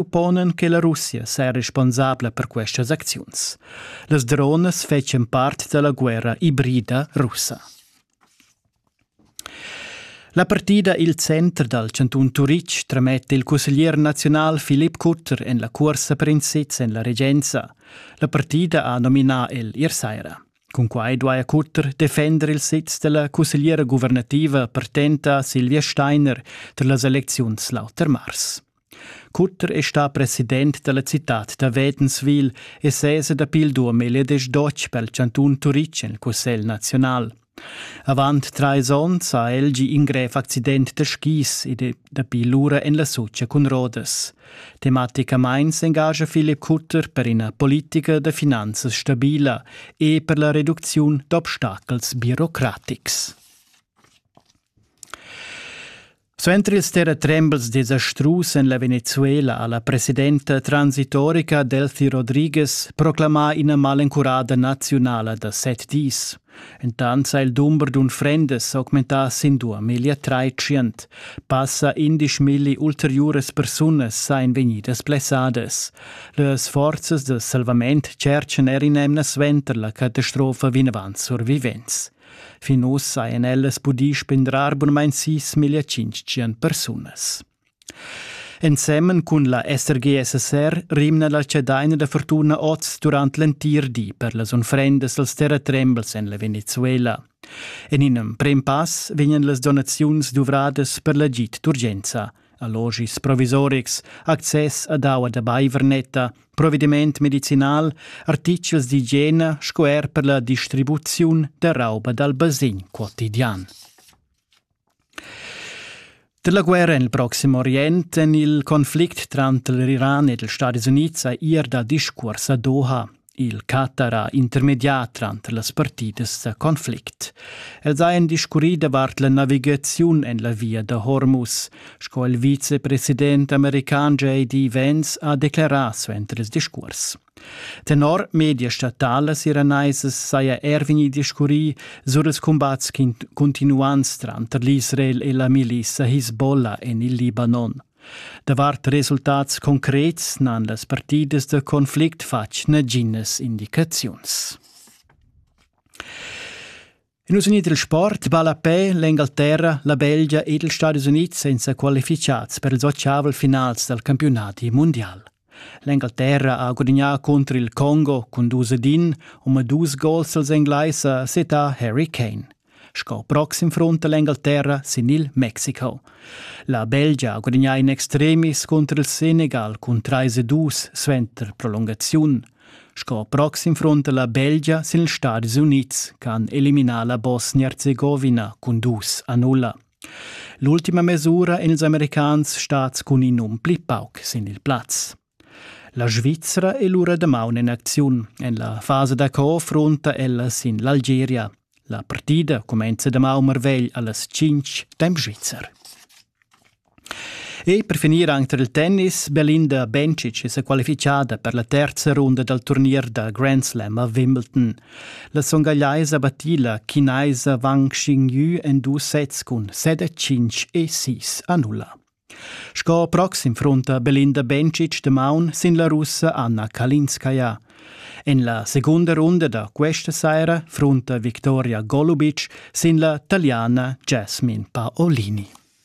upponan che la Russia saja responsabla per questas acziuns. Las dronas fetschan part da la guerra ibrida russa. La partida il center dal cantun Turitg trametta il cusseglier nazional Philipp Kutter en la cursa per in sitz en la regenza. La partida ha nominà el ier saira. Cunquai duaja Kutter defender il sitz della cussegliera guvernativa partenta Silvia Steiner tar las elecziuns l'auter mars. Cutter è stà president da la citad da Wädenswil e sesa dapi il duamilliadesch dotg pel chantun Turitg en il Cussegl naziunal. Avant trais onns ha el gì in grev accident da skis ed è dapi lura en la Sotscha cun rodas. Tematicamain s'engascha Philipp Cutter per ina politica da finanzas stabila e per la reducziun d'obstacels birocratics. Suenter ils terratrembels desastrus en la Venezuela ha la presidenta transitorica Delfi Rodriguez proclamà ina malencurada naziunala da set dis. Entant ha il dumber d'unfrendas s'augmentà sin duamillia tratschient. Passa indisch milli ulteriuras persunas ein vegnidas blessadas. Las forzas da salvament tscherchan er in'emna suenter la catastrofa vinavant survivents. Fin ussa ein ellas pudì spindrar bunmein sis milla tschintg persunas. Ensemen cun la SRGSSR rimna la cedaina da fortuna oz durant l'entir di per las unfrendas als terratrembels en la Venezuela. En in emprim pass vegnan las donaziuns duvradas per l'agid d'urgenza allogis provisorics, access ad aua da baiver netta, provediment medicinal, artichels d'igiena sco er per la distribuziun da rauba dal basin quotidian. Da la guerra nel Proximo Orient en il conflict tranter l'Iran ed els Stati Units ha ir da discurs a Doha. Il catar ha intermedià tranter las partidas da conflict. Els hajan discurrì davart la navigaziun en la via da Hormuz, sco il vicepresident american J.D. Vance ha declerà suenter il discurs. Tenor media statalas iraneisas saja er vegnì discurrì sur ils cumbats cuntinuants tranter l'Israel e la milissa Hisbollah en il Libanon. Davart resultats concrets n'han las partidas da conflict fatg naginas indicaziuns. In nus unit il sport balla a pe l'Engalterra, la Belgia ed ils Stadis Unids senza qualificads per ils ottavel finals dal campionati mundial. L'Engalterra ha gudagnà cunter il Congo cun dus ed in, omadus gols als Engleis ha setà Harry Kane. Sco proxim frunta l'Engalterra sin il Mexico. La Belgia ha gudagnà in extremis cunter il Senegal cun 3 e 2 suenter prolungaziun. Sco proxim frunta la Belgia sin ils Stadis Unids, che han eliminà la Bosnia-Herzegovina cun dus a nulla. L'ultima mes'ura èn ils Americans stads cun in um pli pauc sin il plaz. La Svizra è lura damaun en acziun. En la fasa d'accord frunta ella sin l'Algeria. La partida cumenza damaun marvegl allas 5 temp svizzer. E per finir anche tar il tennis, Belinda Bencic è sa qualifichada per la terza runda dal turnier da Grand Slam a Wimbledon. La songagliaisa battila chinaisa Wang Xingyü en dus sets cun set e tschintg e sis annulla. Sco proxim frunta Belinda Bencic de maun sin la russa Anna Kalinskaya. En la segunda runda da questa saira frunta Victoria Golubic sin la taliana Jasmine Paolini.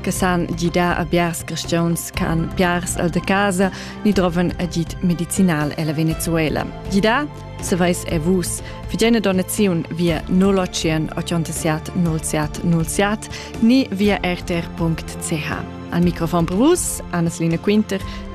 che san gidar a biars cristians che han piars al de casa ni droven agid medicinal ella Venezuela. Gidar? Se veis e vus, fidene donaziun via 081 87 07 07 ni via rtr.ch. Al microfon per vus, Anneslina Quinter, che